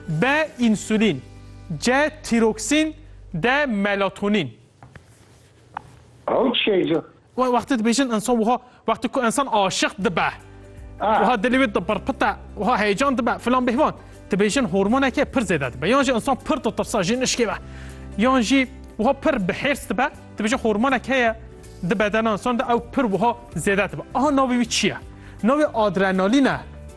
B însulîn C tîroksîn D melatonîn Ew çi ye îcar? Wê wextê dibêjin insan wiha wextê ku insan aşiq dibe wiha dilê wê dipirpite wiha heyecan dibe filan bêhvan dibêjin hormoneke pir zêde dibe yan jî insan pir ditirsa ji nişkê ve yan jî wiha pir bi hêrs dibe dibêjin hormonek heye di bedena insan de ew pir wiha zêde dibe aha navê wî çi ye? Navê adrenalîn e.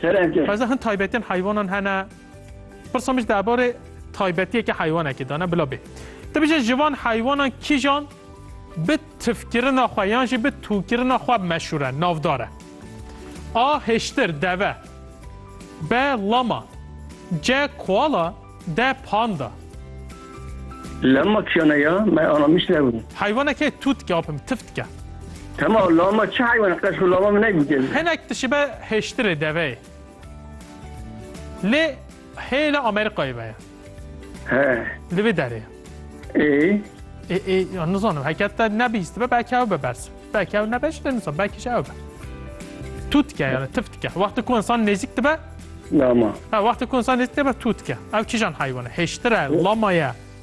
Serence. Taza hin taybetiyên heywanan hene. Pirsa min ji derbarê taybetiyeke heywanekê de ne bila bê. Tu bijî ji van heywanan kîjan bi tifkirina xwe yan jî bi tûkirina xwe meşhûr e, navdar e? A. Hiştir, deve B. Lama C. Koala De panda. Lama kiyana ya me aramiş nebû. Heywaneke tu dike apim tif dike. Tema lama çi heywana qeş xwe lama min negûtiye. Hinek dişibe hêştirê deveyê. Lê hêla Amerîkayê ve ye. He. Li vê derê ye. Ê Ê ê ya nizanim heke te nebîstibe belkî ew be bers. Belkî ew nebe ji te nizanim belkî ji ew be. Tu dike yani tif dike. Wextê ku insan nêzîk dibe Lama. ha wextê ku insan nêzîk dibe tu dike. Ew kîjan heywan e? Hêştir e, lama ye.